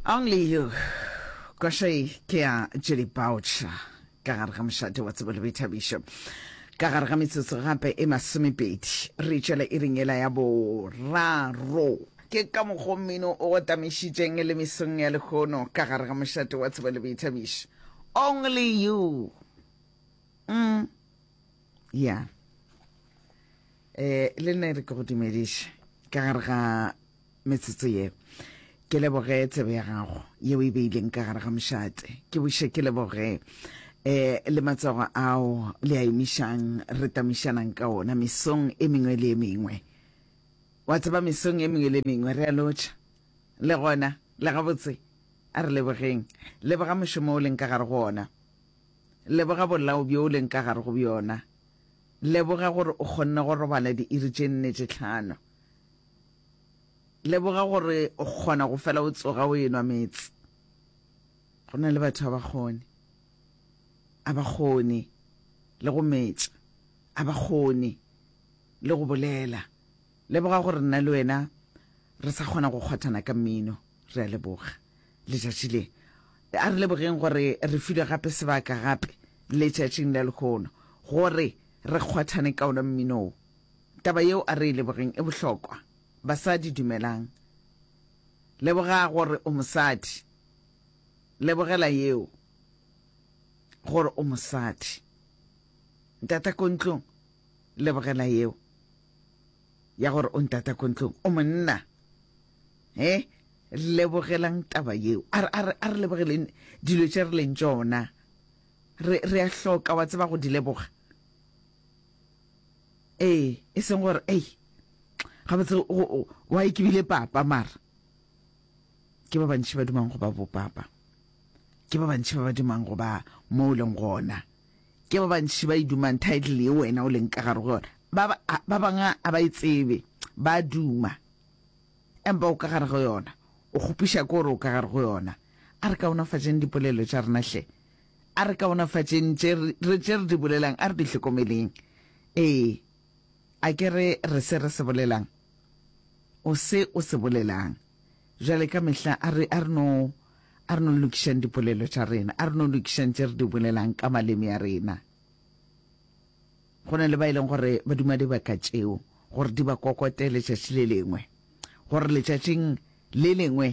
Only you. Kwashei ke ya Julie Boucher ka gare ga mošate wa tsebo le boithabišo ka gare ga metsotso gape e masomepedi re tšwela e ringela ya boraro ke ka mokgwa mmino o go tamišitšeng le mesong ya lekgono ka gare ga mošate wa tsebo le boithabišo only you mm. ya yeah. eh le nna re ke go dumediše ka gare ga metsotso ye ke leboge tsebe ya gago yeo e beileng ka gare ga mošate ke buše ke leboge eh le matsogo ao le a emišang re tamišanang ka ona mesong e mengwe le e mengwe wa tseba mesong e mengwe le mengwe re a lotšha le gona le gabotse a re lebogeng leboga mošomo o leng ka gare go ona Leboga bolao bjo o leng ka gare go bjona. Leboga gore o kgonne go robala diiri tše nne tše tlhano. Leboga gore o kgona go fela o tsoga o enwa meetse. Go na le batho a ba kgone. A ba kgone le go metša. A ba kgone le go bolela. Leboga gore nna le wena re sa kgona go kgwathana ka mmino. Re a leboga letšatši le. A re lebogeng gore re filwe gape sebaka gape letšatšing la lehono gore re kgwathane ka ona mmino wo. Taba yeo a re e lebogeng e bohlokwa. Basadi dumelang. Leboga gore o mosadi. Lebogela yeo gore o mosadi. Ntatakontlong lebogela yeo ya gore o ntata ko ntlong o monna e lebogelang taba yeo a re lebogeleng dilo tše re leng tšona re a hloka wa tseba go di leboga ee e seng gore ei gabotse wa e ke bile papa mara ke ba bantši ba dumang go ba bopapa ke ba bantši ba ba dumang go ba mo o leng gona Ke ba bantši ba e dumang title ye wena o leng ka gare go yona. Ba ba bangwe a ba e tsebe, ba duma empa o ka gare go yona, o kgopiša ko gore o ka gare go yona. A re kaonafatšeng dipolelo tša rena hle, a re kaonafatšeng tše re di bolelang, a re di hlokomeleng. Ee, A ke re re se re se bolelang? O se o se bolelang. Bjale ka mehla a re, a re no, a re no lokišang dipolelo tša rena, a re no lokišang tše re di bolelang ka maleme a rena. Go na le ba e leng gore ba duma dibaka tšeo gore di ba kokote letšatši le lengwe, gore letšatšing le lengwe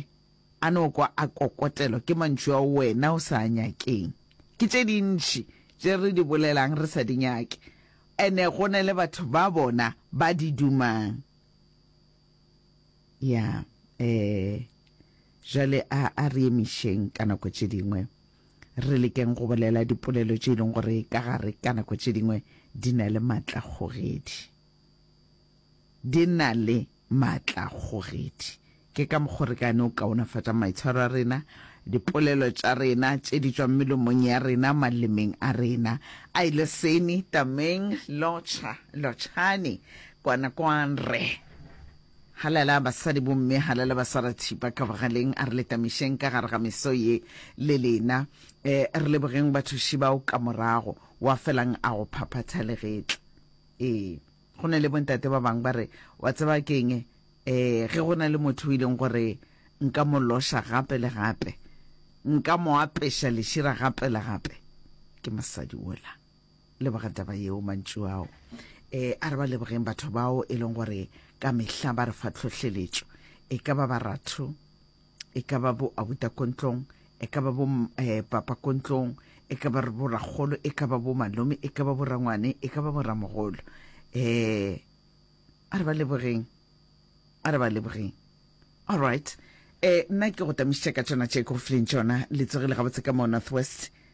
A no kwa a kokotelwa ke mantšu ao wena o sa a nyakeng? Ke tše dintši tše re di bolelang re sa di nyake, ene go na le batho ba bona ba di dumang. Ya, ee. Jale a, a re emišeng ka nako tše dingwe re lekeng go bolela dipolelo tše e leng gore ka gare ka nako tše dingwe di na le maatlakgogedi. Di na le maatlakgogedi. Ke ka mokgo re ka no kaonafatšang maitshwaro a rena, dipolelo tša rena tše di tšwang melomong ya rena, malemeng a rena. Ai, leseni, tameng, lotšha, lotšhani, kwana, kwan, re. Halala, basadi, bomme, halala, basarathipa, ka bogaleng, a re le tamišeng ka gare ga meso ye le lena. E, re lebogeng bathuši bao ka morago. Wa felang a go phaphatha legetla. Ee. Go na le bontate ba bangwe ba re, Wa tseba ke eng? Ge go na le motho o e leng gore nka mo loša gape le gape, nka mo apeša lešira gape le gape, ke mosadi wola. Leboga taba yeo, mantšu ao. E, a re ba lebogeng batho bao e leng gore ka mehla ba re fa tlhohleletšo, e ka ba baratho, e ka ba bo abuta ko ntlong e ka ba bo eh, papa ko ntlong e ka ba bo rakgolo e ka ba bo malome e ka ba bo rangwane e ka ba bo ramogolo um a re ba lebogeng a re ba lebogeng all right um nna ke go tamišitša ka tšona tše ke go fileng tšona le tsogile gabotse ka mo north west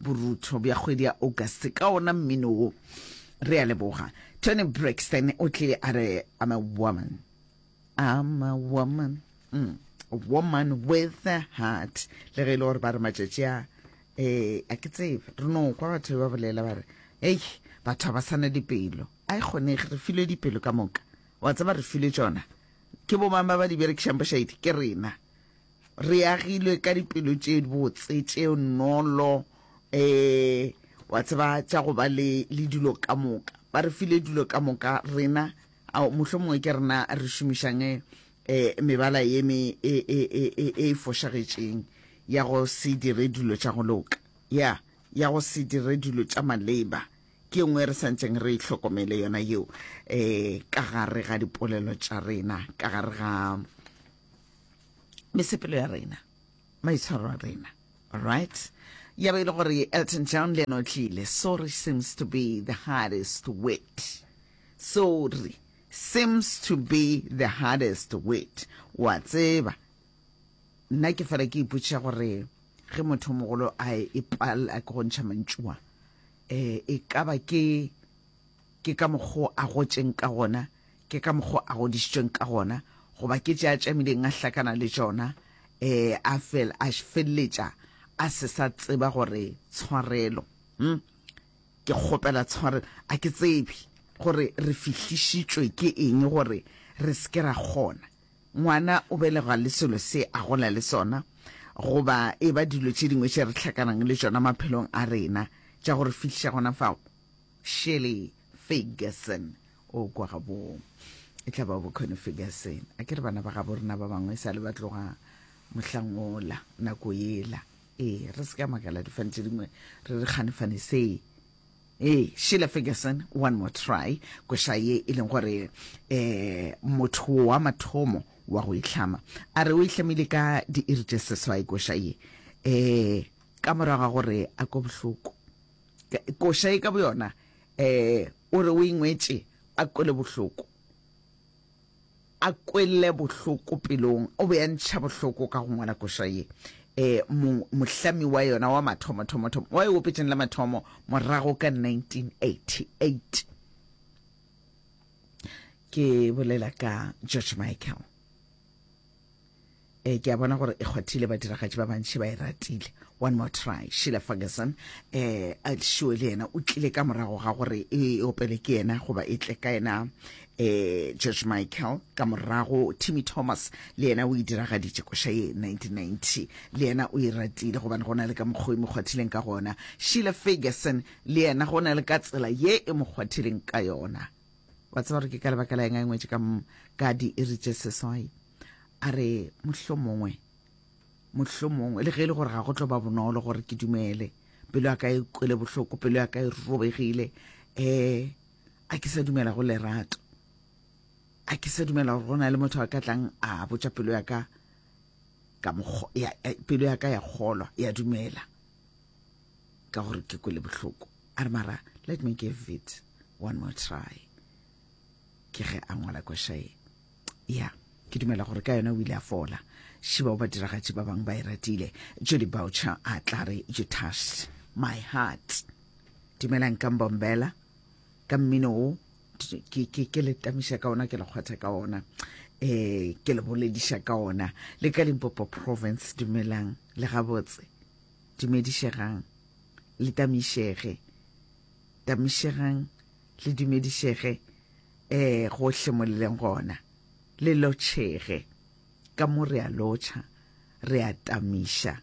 Borutho bja kgwedi ya August ka ona mmino wo. Re a leboga. Toni Braxton o tle a re I'm a woman. I'm a woman. Mm. A woman with a heart. Le ge e le gore ba re matšatši a eh a ke tsebe re no kwa batho ba bolela ba re ei batho ba sana dipelo a e kgonege re filwe dipelo ka moka wa tseba re filwe tsona ke bo mang ba ba di berekišang bošaedi ke rena Re agilwe ka dipelo tše botse tše nolo um wa tseba tša go ba le le dilo ka moka ba re file dilo ka moka rena mohlo mongwe ke rena re šomišang um mebala ye me e, e, e, e, e fošagetšeng ya go se dire dilo tša go loka ya ya go se dire dilo tša maleba ke nngwe re santseng re itlhokomele yona yeo um ka gare ga dipolelo tša rena ka gare ga mesepelo ya rena maitshwaro a rena right ya ba e le gore elton john le ena o tlile sorry seems to be the hardest wit sorry seems to be the hardest wit wa tseba nna ke fela ke ipotšiša gore ge motho mogolo a e pala ke go ntšha mantšua um e ka ba ke Ke ka mokgo a gotšeng ka gona, ke ka mokgo a godišitšweng ka gona, goba ke tše a tšamileng a hlakana le tšona, ee, a fel, a felletša a se sa tseba gore tshwarelo. Hm? Ke kgopela tshwarelo. A ke tsebe gore re fihlišitšwe ke eng gore re se ke ra kgona. Ngwana o belegwa le selo se a gola le sona, goba e ba dilo tše dingwe tše re hlakanang le tšona maphelong a rena, tša go re fihliša gona fao. Shirley Ferguson o kwa gabo e tla ba bokgoni Ferguson a ke re bana ba gabo rena ba bangwe e sa le ba tloga mohlangola nako yela ee re se ka makala difane tse dingwe re re kganefane see ee Sheila Ferguson one more try koša ye e leng gore eh motho wa mathomo wa go itlhama a re o itlhamile ka diiri tše seswai koša ye eh ka morago ga gore a ko bohloko Koša ye ka boyona um o re o e ngwetše a kwele bohloko, a kwele bohloko pelong. O be a ntšha bohloko ka go ngwala koša ye. Um mohlami wa yona wa mathomothomothom wa e opetšeng la mathomo morago ka 1988. Ke bolela ka George Michael. eh ke a bona gore e kgwathile badiragatši ba bantši ba e ratile one more try sheila ferguson eh a šiwe le yena o tlile ka morago ga gore e, e opele ke yena goba e tle ka yena eh george michael ka morago timmy thomas le yena o e diragaditše koša ye 1990 le yena o e ratile gobane go na le ka mokgwa e mo kgwathileng ka gona sheila ferguson le yena go na le ka tsela ye e mo kgwathileng ka yona wa tseba gore ke ka lebaka la eng a engwetše ka ka diiri tše seswai a re mohlo mongwe mohlo mongwe le ge e le gore ga go tlo ba bonolo gore ke dumele pelo ya ka e kwele bohloko pelo ya ka e robegile um a ke sa dumela go lerato a ke sa dumela gore go na le motho a ka tlang a botša pelo ya ka ka pelo ya ka ya kgolwa ya dumela ka gore ke kwele bohloko a re mara let me give it one more try ke ge a ngwala kwešae ya ke dumela gore ka yona o ile a fola šiba o ba diragatši ba bangwe ba e ratile jody boucher a tla re you touched my heart dumelang ka mbombela ka mmino o ke ke ke le tamiša ka ona ke le kgwatha ka ona eh ke le bolediša ka ona le ka Limpopo province dumelang le gabotse dumedišegang le tamišege tamišegang le dumedišege eh gohle mo le leng gona le lotšhege ka mo re a lotšha re a tamiša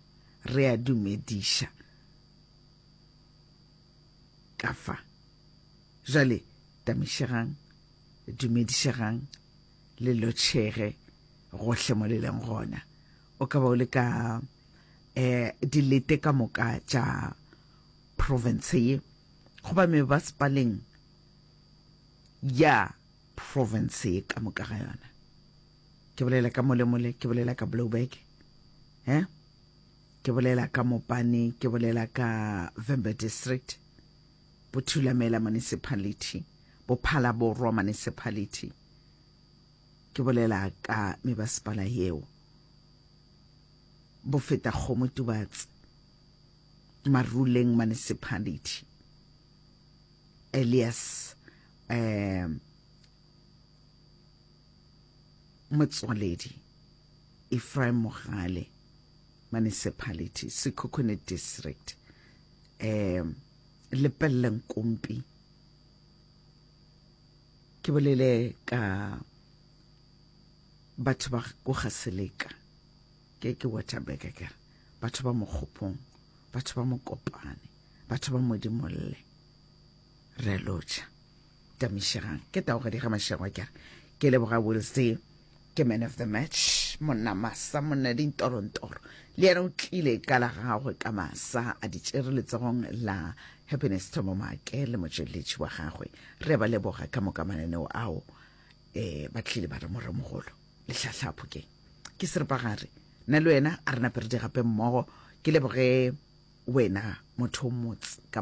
re a dumediša ka fa Jale, tamišegang, dumedišegang, le lotšhege gohle mo le leng gona. O ka ba o le ka eh, dilete ka moka tša province ye goba mebasepaleng ya province ye ka moka ga yona ke bolela ka molemole ke bolela ka blowback eh ke bolela ka mopane ke bolela ka vember district Bothulamela Municipality, Bophala Borwa Municipality, ke bolela ka mebasepala yeo, Bofetakgomo Tubatse, Maruleng Municipality, Elias um Motswaledi, Ephraim Mogale, Municipality, Sekhukhune District, um Lepelle Nkompi. Ke bolele ka batho ba go ga Seleka, ke ke Waterberg ka batho ba Mokgopong, batho ba Mokopane, batho ba Modimolle. re lotšha tamišegang ke tago gadi ga mašego ke re ke leboga will se ke man of the match monna masa monna dintorongtoro le yena o tlile ka la gagwe ka masa a di tšere letsogong la happiness thomo maake le motšweletši wa gagwe re ba leboga ka moka mananeo ao um ba tlile ba re moremogolo letlhatlhapho ke ke seripagare nna le wena a re naperedi gape mmogo ke leboge wena motho o motse ka